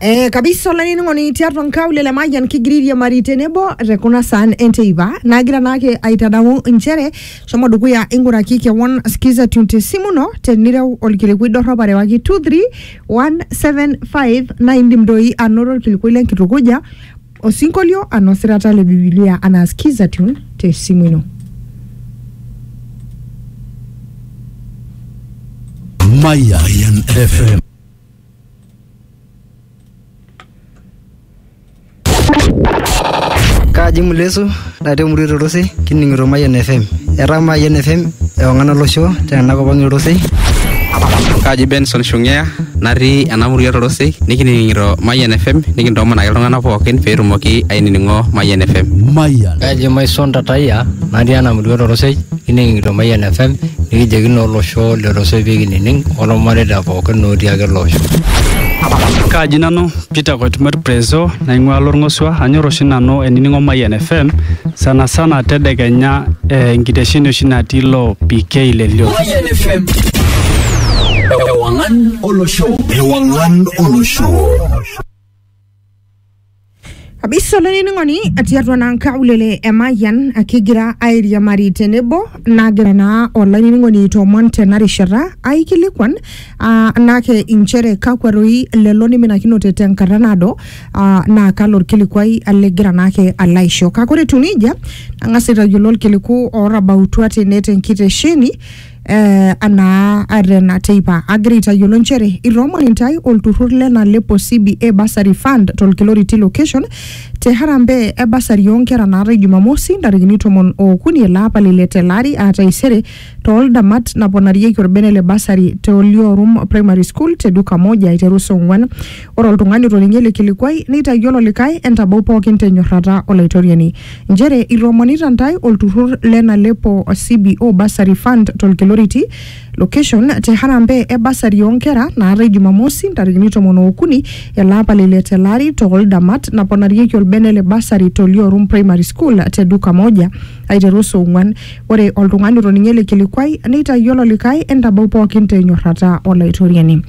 Eh, kabisa olainining'oni tiatua nkaulele le Mayian kigira airiamari tenebo te kuna saan enteipa naagira naake aitadamu inchere shomo dukuya ing'uraki kewon skiza tune te simu ino tenireu olkilikuai dorrop arewaki 23175 naa indim doi anoto olkilikuai lenkitukuja Osinkolio anaa osirata le Bibilia anaa Skizatune te esimu ino. Mayan FM. Kaji ng'ole Yesu Ore te murua e Torosei kining'ito Mayian FM. Etaa Mayian FM ewang'an olosho tena kop ang e Torosei. Kaji Benson Shung'ea natii ena murua e Torosei nikining'ito Mayian FM nikintoomon ake iltung'anak pookin pee etumoki ainining'o Mayian FM. Mayian. Kaji Maison Tatayia natii ena murua e Torosei kining'ito Mayian FM nikijoki naa olosho le Torosei pee kinining olmareita pookin otii ake ele osho. Kaji nanu Peter Koitumor Prezo naing'ua Lorng'osua. Anyor oshi nanu ainining'o Mayian FM sana sana tedekenya eh, enkitesheni oshi natii ilo PK le Lio. Mayian FM. Ewangan olosho. Ewangan olosho. kabisa olainining'oni tiatua naa nkaulele emayian kigira airiamari tenebo nagira naa olainining'oni aitoomon tena rishata aikilikuan Ah, nake inchere kakwa roi lelo niminakinote tenkata naado ah, naa kalo orkilikuai ligira naake alo aisho kake ore etiu nejia nang'as aitayiolo orkiliku ootabautua tene tenkitesheni eh, anaa atena teipa agira aitayiolo inchere itoomon intae olturrur le nalepo CBA bursary fund tolkiloriti location te harambee e basari oonkera naatae jumamosi ntarikini tomon ookuni ele apa le ile tele ari aa taisere too ldamat naponarieki orbene le basari te Oliorum Primary School te duka moja aiteru saa ong'uan. Ore oltung'ani otoninge ele kilikuai neitayiolo likae entabau pookin te nyorrata Olaitoriani. Nchere itoomonita ntae olturrur le Nalepo CBO Bursary Fund to Lkiloriti, location te harambee e basari oo nkera naatae Jumamosi ntarikini tomon ookuni ele apa le ile tele ari too ldamat naponarieki orbene le basari te Oliorum Primary School te duka moja. aiteru saa ong'uan. Ore oltung'ani otoning'o ele kilikuai neitayiolo likae entabau pookin te nyorrata Olaitoriani.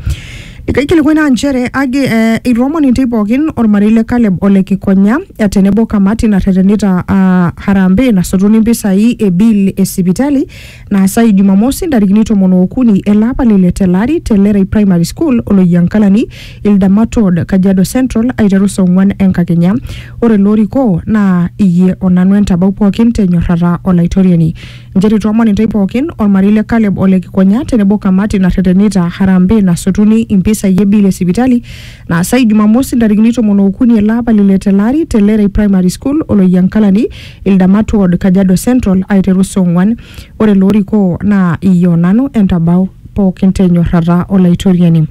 Likae kilikuai naa nchere agi eh, eitoomon intae pookin olmarei le Kaleb ole Kikonya eh, tenebo kamati narretenita ah, harambee nasotuni mpisai e bill e sipitali naasayu Jumamosi ntarikini tomon ookuni ele apa le ile telari te Lerai Primary School Oloyiankalani, Ildamat Road, Kajiado Central aiteru saa ong'wan enkakenya. Ore ilo orikoo naa iyie o nanu entabau pookin te nyorrata o Laitoriani. Njere itoomon intae pookin, olmarei le Caleb o le Kikonya tenebo kamati narretenita harambee nasotuni impisai e bill e sipitali naasayu Jumamosi ntarikini tomon ookuni ele apa le ile telari te Lerai Primary School Oloyiankalani, Ildamat ward Kajiado Central aiteru saa ong'uan. Ore loorikoo naa iyie o nanu entabau pookin te nyorrata Olaitoriani.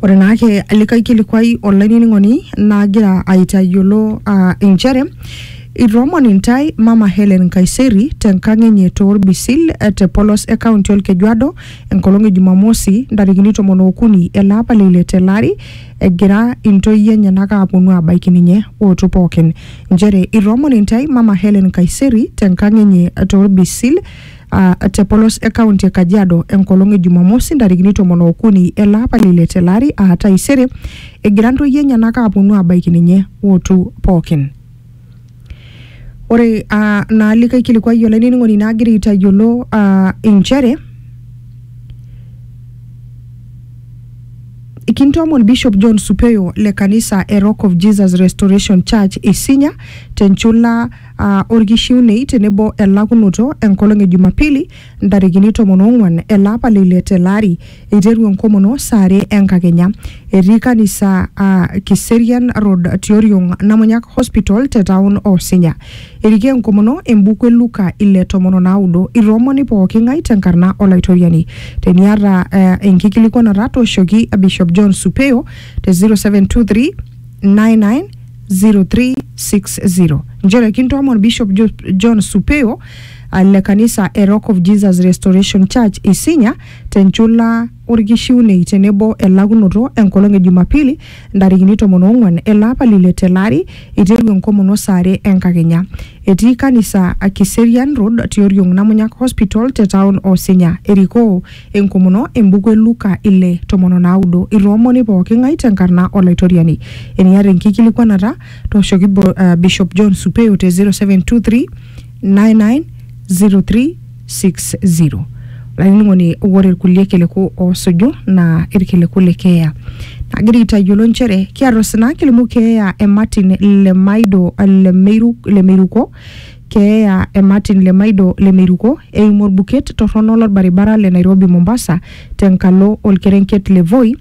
Ore naake likae kilikuai olainining'oni nagira aitayiolo aa inchere itoomon intae Mama Hellen Nkaiseri tenkang enye toorbisil eh, te polos e kaunti Olkejuado enkolong e Jumamosi ntarikini tomon ookuni ele apa le ile tele ari egira intoyie enyenak aaponu aabaiki ninye ootu pookin nchere itoomon intae Mama Hellen Kaiseri tenkang enye tolbisil ah, te polos e kaunti e Kajiado enkolong e Jumamosi ntarikini tomon ookuni ele apa le ile tele ari aa taisere egira intoyie enyenak aaponu aabaiki ninye ootu pookin. Ore aa naa likae kilikuai olainining'oni naa agira aitayiolo aa inchere kintoomon Bishop John Supeyo le kanisa e Rock of Jesus Restoration Church Isinya tenchula aa orkishiunei tenebo elakunoto enkolong e Jumapili ntarikini tomon oong'wan ele apa le ile tele ari eiteru enkomono saa are enkakenya. Etii kanisa aa Kiserian Road tioriong Namunyak Hospital te taon o Sinya. Erikoo enkomono embuku e Luka ile tomon o naudo. Itoomoni pooki ng'ae te nkarna o Laitoriani. Teniata uh, enkikilikuanata tooshoki Bishop John Supeo te 0723 99 0360 nchere kintoomon Bishop Jo- John Supeo uh, le kanisa e Rock of Jesus Restoration Church Isinya tenchula orkishiunei tenebo elakunoto enkolong e Jumapili ntarikini tomon oong'uan ele apa lile tele ari eiteru enkomono saa are enkakenya. Etii kanisa Kiserian Road tioriong Namunyak Hospital te taon o Sinya. Erikoo enkomono embuku e Luka ile tomon o naudo. Itoomoni pooki ng'ae tenkarna Olaitoriani. Eniata enkikilikwanata, tooshoki Bishop John Supeyo te 0723 9903 60 olainining'oni ore irkulie kiliku oosuju naa irkiliku le keeya nagira aitayiolo nchere kiata osina kilimu keeya e Martin le Maido le Meiru le Meiruko keeya e Martin le Maido le Meiruko eimu orbuket torrono lorbaribara le Nairobi Mombasa tenkalo orkerenket le Voi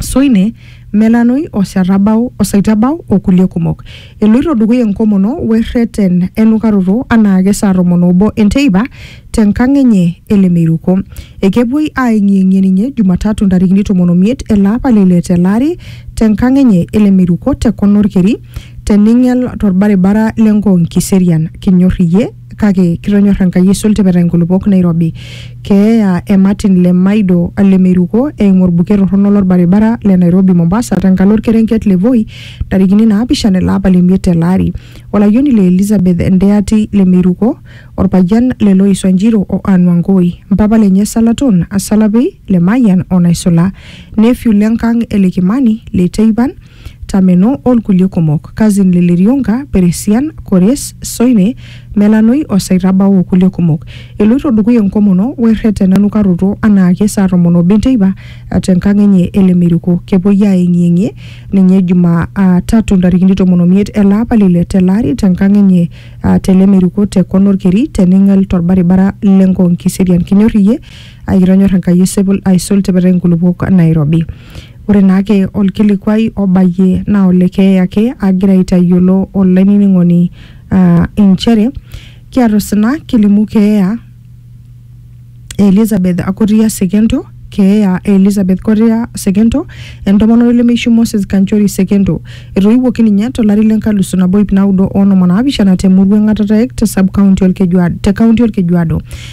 Soine, Melanoi o Shatabau o Saitabau o kulie kumok. Eloito dukuya enkomono we rreten enukaroto anaake saa tomon obo enteipa te nkang enye e Lemeiruko. Ekepuoi aayeng'iyeng'ie ninye Jumatatu ntarikini tomon omiet ele apa le ile tele ari te nkang enye e Lemeiruko te kona olkeri te Ning'el to lbaribara le Ngong Kiserian. Kinyor iyie? kake kitonyor Enkai aisul tipita inkulupuok nairobi. Keeya e Martin Lemaido Lemeiruko eimu olbuket torrono lolbaribara le Nairobi Mombasa tenkalo olkerenket le Voi ntarikini naapishana ele apa le miet tele ari. Olayioni le Elizabeth Ndeati Lemeiruko, olpayian le Lois Wanjiru o Ann Wangoi, mpapa lenye Salaton Asalapi, Lemayian o Naisula, nephew le nkang e Lekimani, Leteipan, Tameno o lkulie kumok, Kazin le Lirionga, Peresian, Kores, Soine, Melanoi o Saitabau o kulie kumok. Eloito dukuya enkomono o erreten enukaroto anaake saa tomon obo enteipa te nkang enye e Lemeriko. Kepuoi aayeng'iyeng'ie ninye Juma a tatu ntarikini tomon omiet ele apa le ile tele ari te nkang enye a te Lemeriko te kona olkeri te Ning'el to lbaribara le Ngong Kiserian. Kinyor iyie? Ai kitonyor Enkai esipil aisul tipitai nkulupuok nairobi. Ore naake olkilikuai obayie naa ole keeya ake agira aitayiolo olainining'oni aa inchere kiata osina kilimu keeya e Elizabeth Koria Sekento, keeya e Elizabeth Koria Sekento, entomononi lemeishu Moses Kanchori Sekento. Etoiwuoki ninye tolari le nkalusu nabo iip naudo oonom onaapishana te murua e Ng'atarek te sub-county Olkejuado, te county Olkejuado.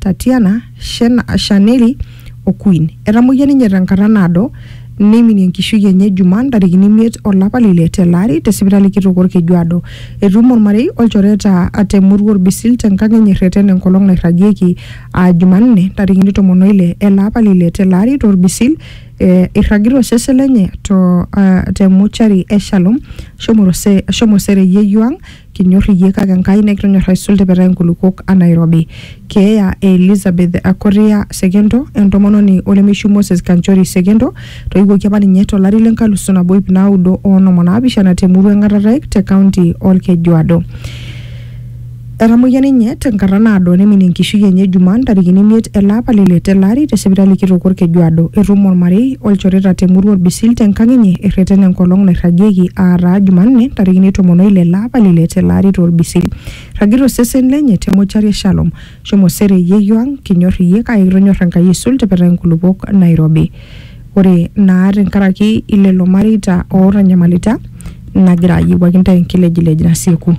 Tatiana, Shaneli o Queen. Etamoyia ninye tenkata naado neiminie enkishui enye Jumaa ntarikini imiet olapa le ile tele ari te sipitali kitok Olkejuado. Etuumo olmarei olchoreta te murua Orbisil tenkang enye erreten enkolong nairragieki aa Jumanne ntarikini tomon o ile ele apa le ile tele ari to Orbisil eh, eirragita osesen lenye to, uh, te muchari e Shalom shomo, rose, shomo sere yeyio ang Kinyor iyie kake Enkai nikitonyor aisul tipitai nkulukuok a Nairobi. Keeya e Elizabeth Koria Sekento, entomononi olemeishu Moses Kanchori Sekento, toiwuoki apa ninye to lari le nkalusu nabo ip naudo o onom o naapishana te murua e Ngatataek te kaunti o Lkejuado. Etamoyia ninye te nkata naado neiminie enkishui enye Jumaa ntarikini imiet ele apa le ile tele ari te sipitali kitok o Lkejuado. Etum olmarei olchoreta te murua Orbisil te nkang enye erreten enkolong nairragieki aa taa Jumanne ntarikini tomon oile ele apa le ile tele ari to Orbisil. Eirragita osesen lenye te mochari e Shalom. Shomo sere yeyio ang, kinyor iyie kake kitonyor Enkai aisul tipita inkulupuok nairobi. Ore naa tenkaraki ilelo mareita ootanyamalita nagira ayiewuaki intae enkilejilej nasieku.